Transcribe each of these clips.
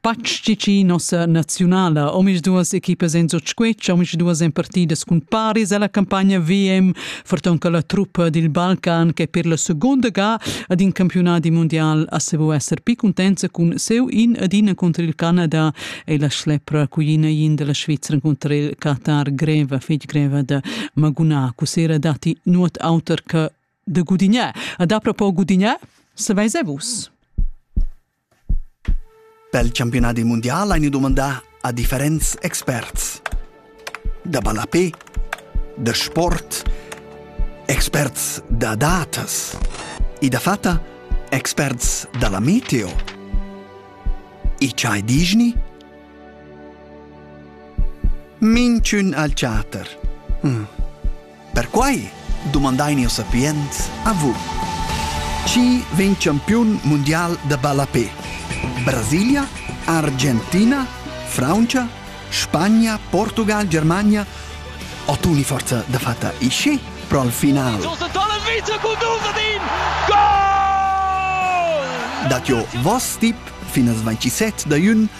Patg tgi nossa naziunala omisduas equipas en sotschquetsch, omisduas en partidas cun paris alla campagna VM, ferton che la truppa dil Balcan che per la seconda ga ad in campionati mondial a se vo esser pi contenza cun seu in adina contro il Canada e la schlepra cuina in della Svizzera contro il Qatar greva, fetg greva da Maguna, cusera dati nuot auter che de Gudigné. A da propo Gudigné, se vai se vus. Pel campiunadi mundial hain dumandà a differents experts. Da ballapè, da sport, experts da datas e dafatta experts da la meteo. E chai dischni? Minchün al chatter. Hm. Perquai dumandain jau sapients a vus. Chi vegn campiun mundial da ballape? Brasilia, Argentina, Francia, Spagna, Portugal, Germania o tu ni forza da fatta isci pro al final? Josef Dolomita cu Duvadin! Gol! Dat jo voss tip fin al 27 da jun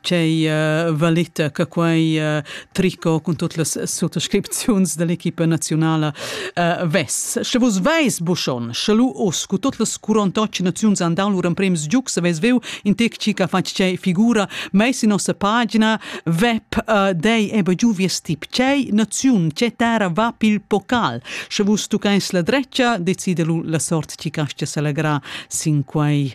Tgei uh, valeta che quei uh, tricot cun tut las suttascripziuns dell'equipa nazionala uh, vess. Sche vus veis buschon, sche lu us cu tot las 48 naziuns andau lur emprems giuc, se veis veu in tec ci che fatg cei figura meis in nossa pagina web uh, dei ebe giu vies tip cei naziun ce terra va pil pocal. Sche vus tu caes la dreccia, decide lu la sort ci castia se legra sin quei